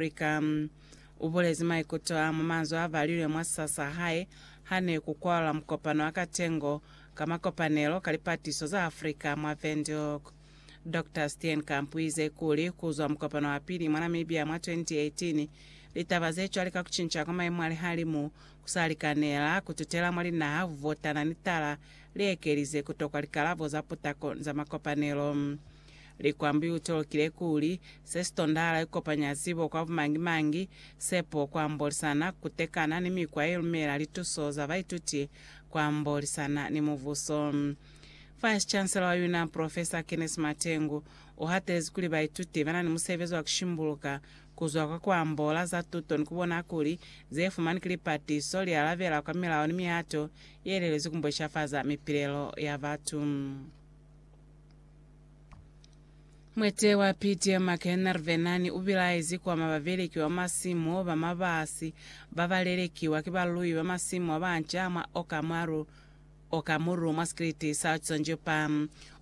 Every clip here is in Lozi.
Africa. U bulezi maikuto a mu manzwi a balilwe mwa sa sa hae ha ne ku kwalwa mukopano wa katengo ka makopanelo ka lipatiso za Africa mwa Windhoek. Doctor Steenkamp u ize kuli ku zwa mukopano wa pili mwa Namibia mwa 2018, litaba ze cwale ka ku cinca kwa maimo a lihalimu ku sa likanela ku tutela mwa linaha ku votana ni tala li ekelize ku tokwa likalabo za putako za makopanelo Likwambyuta lukile kuli, Se si tondahala ikopanya zibo kwa bumangi-mangi, sepo, kuambolisana, kutekana, ni mikwa ye lumela lituso za baituti kuambolisana ni mubuso. Vice-Chancellor wa UNAM, Professor Kenneth Matengu, u hatelezi kuli baituti ba na ni musebezi wa ku shimbuluka kuzwa kwa ku ambola za tuto ni ku bona kuli ze fumanwi ki lipatiso li alabela kwa milao ni mihato ye lelezwi ku mbweshafaza mipilelo ya batu. Mwete wa Peter McEnervenani u bilaezi ku ama babeleki ba masimu ba mabasi ba ba lelekiwa ki baluyi ba masimu ba banca mwa Okamuru, Okamuru, mwa sikiliti sa Tsonjupa.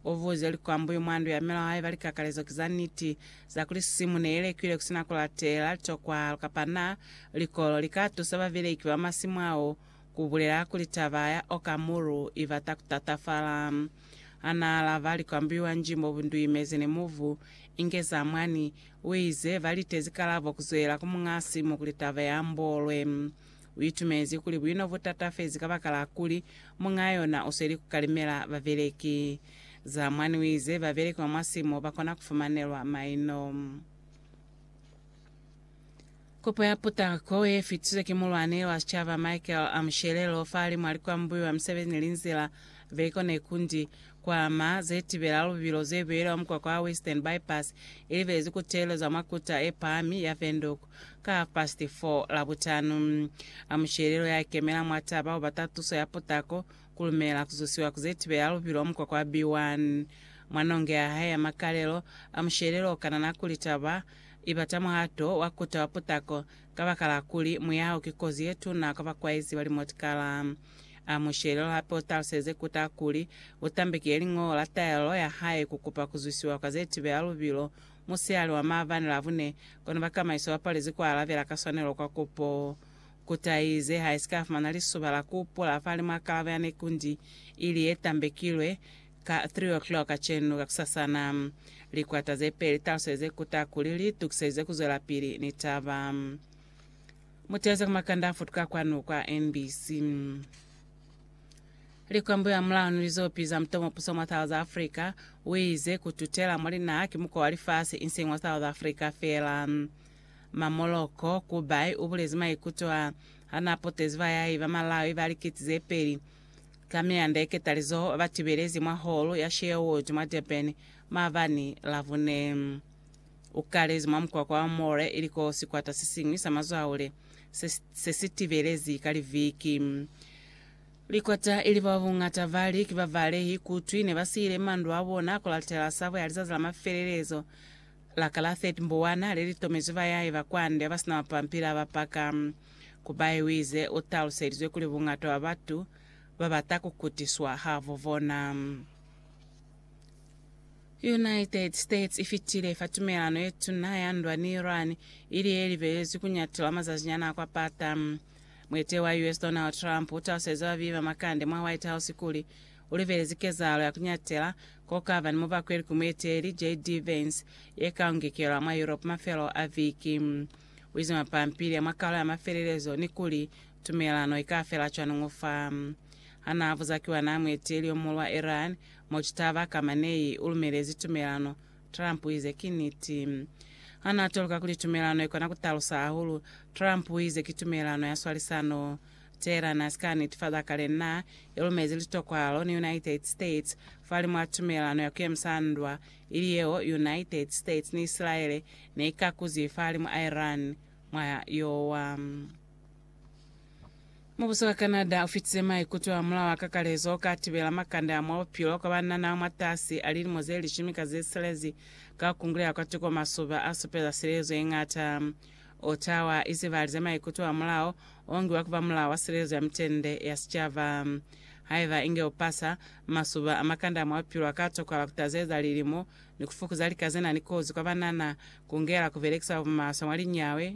U buze likwambuyu mwa ndu ya mela wa hae ba likakalezo ki za niti za kuli simu ne i lekiwe ku si na ku latela litokwalo kapa naa likolo li ka tusa babeleki ba masimu ao ku bulela kuli taba ya Okamuru i bata ku tatafala. Ha n'a alaba likwambiwa nji mo bu nduimezi ni mubu, inge za mwani, u ize, ba litezi kalabo ku zwelela ku muñ'a simu kuli taba ye ambolwe. U itumezi kuli bu in'o bu tatafezi kabakala kuli muñ'a yona u sweli ku kalimela babeleki. Za mwani u ize, babeleki ba mwa simu ba kona ku fumanelwa maino. Kopo ya putako ye fitize ki Mulwani wa Sicaba Michael Amushelelo fahali mwa likwambuyo ya musebezi ni linzila, vehicle ne kundi, kwa ama ze tibela lubilo ze beyelwa mukwakwa wa Western Bypass, i libelezi ku teelezwa mwa kuta ye pahami ya Windhoek ka half past 4 Labutanu. Amushelelo ya ikemela mwa taba u bata tuso ya putako, ku lumela ku zusiwa ku ze tibela lubilo mukwakwa wa B1. Mwa nonge ya hae ya makalelo, Amushelelo u kanana kuli taba I bata muhato wa kuta wa putako, kabakala kuli muyaho ki kozi ye tuna kwa bakwaezi ba limotikala. Amushele luli hape utaluseze kuta kuli utambekile liñolo la taelelo ya hae kukupa kuzwisiwa kwa ze tibela lubilo musihali wa maabani Labune, kono bakamaiso ba palezi kualabela ka swanelo kwa kupo. Kuta iize haisika fumana lisuba la kuupula fahalimwa kalabo ya nekundi ili ye tambekilwe, Ka three o'clock kacenu kakusasana, likwata zepeli taluseze kuta kuli li tukiselize kuzwelapili ni taba. Muteze ku makanda afutuka kwanu kwa NBC. Likwambuyo amulaho ni lizopi za mutomopuso mwa South Africa uize kututela mwa linaha ki mukwa wa lifasi inseñi wa South Africa feela. Ma Moloko Kubai ubulezi maikuto a hana apotezi bayahi ba Malawi ba likiti zepeli Ka mianda iketalizo ba tibelezi mwa holo ya Sherwood mwa Durban maabani Labune. U kalezi mwa mukwakwa wa Moore ili ko sikwata se siñwi sa mazwaule se, se si tibelezi ka liviki. Likwata ili ba buñata bali ki ba balehi kutwi ne ba siile mandu a bona ku latela sabo ya lizazi la mafelelezo la ka la 30 Mbuwana le li tomezwi bayahi ba kwande ba ba si na mapampili a ba paka. Kubai wize utaluselizwe kuli bungata bwa batu babata kukutiswa habo bona. United States ifitile fa tumelano yetuna ya ndwa ni Iran, ili yelibelezwi kunyatiwa mazazinyana akwapata. Mueteleli wa US Donald Trump utaluselize babibi ba makande mwa White House kuli ulibelezi kezahalo ya kunyatela kokaba ni mubakweli ku mueteleli JD Vance yekaungekelwa mwa Europe mafelo a viki. U ize mwa pampili ya mwa kalo ya mafelelezo ni kuli, Tumelano i ka fela cwañi fa? Ha n'a buza ki wa n'a mueteli yo muhulu wa Iran, Mojtaba Khamenei, u lumelezi tumelano, Trump u ize ki niti. Ha n'a toluka kuli tumelano i kona ku talusa hahulu, Trump u ize ki tumelano ya swalisano. Tehran ha si ka nitifaza kale n'a i lumezi litokwalo ni United States fahalimw'a tumelano ya ku yemisa ndwa ili yeo United States ni Isilaele ne i kakuzi fahalimu a Iran mwa yo wa. Mubuso wa Canada u fitize maikuto a mulao a kakalezo o ka tibela makande a mwa bupilo kwa ba nanao mwatasi a lilimo ze lishumi ka ze silezi ka ku kunguleha kwa tuko masuba a supeza silezo ye ñata Otawa izibali za maikuto a mulao ongiwa kuba mulao wa silelizo ya mitende ya sicaba. Haiba inge upasa, masuba a makande a mwa bupilo aka tokwala kutazeleza lilimo ni kufukuza lika zenani kozi kwa banana, kungela kubelekisa bumaswe mwa linyawe,